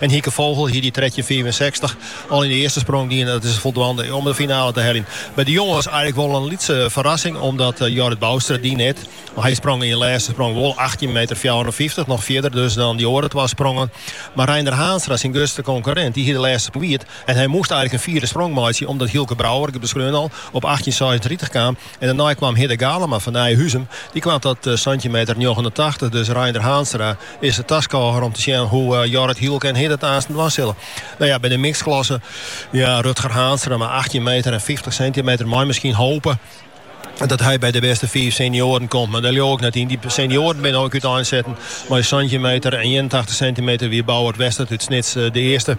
En Hieke Vogel hie dy trettjin fiifensechstich al yn de earste sprong dien. Dat is foldwaande om de finale te heljen. By de jonges eigentlik wol in lytse ferrassing omdat Jorrit Boustra dy net. Hy sprong yn de lêste sprong wol achttjin meter fjouwerenfyftich, noch fierder dus dan dy oare twa sprongen. Mar Reinder Haanstra, syn grutste konkurrint, dy hie de lêste wiet en hy moast eigentlik in fierde sprong meitsje omdat Hylke Brouwer, ik ha beskreaun al, op achttjin seisentritich kaam. En dêrnei kwam Hidde Galama fan Nijhuzum. Dy kwam ta santjin meter njoggenentachtich, dus Reinder Haanstra is de taskôger om te sjen hoe Jorrit, Hylke en Hidde it aansten dwaan sille. No ja, by de mixedklasse, ja, Rutger Haanstra mei achttjin meter en fyftich sintimeter mei miskien hope dat hy by de bêste fiif senioaren komt, mar dêr leau ik net yn. Dy senioaren binne ek úteinsetten. Mei santjin meter en ienentachtich sintimeter wie Bouwert Westert út Snits de earste.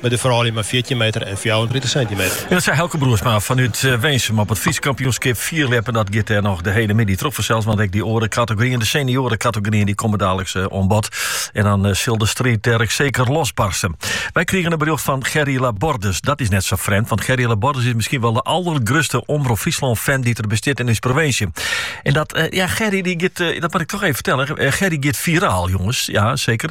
By de froulju mei fjirtjin meter en fjouwerentritich sintimeter. Dat sei Eelke Broersma fanút Winsum op it Frysk kampioenskip fierljeppen. Dat giet dêr noch de hiele middei troch fansels, want ek dy oare kategoryen, de senioarekategoryen, dy komme daliks oan bod. En dan sil de striid dêr ek seker losbarsten. Wy krigen in berjocht fan Gerry Labordus. Dat is net sa frjemd, want Gerry Labordus is miskien wol de aldergrutste Omrop Fryslân-fan dy't der bestiet yn ús provinsje. En dat, ja, Gerry, dy giet, dat moat ik toch even fertellen, Gerry giet viraal, jonges. Ja, seker.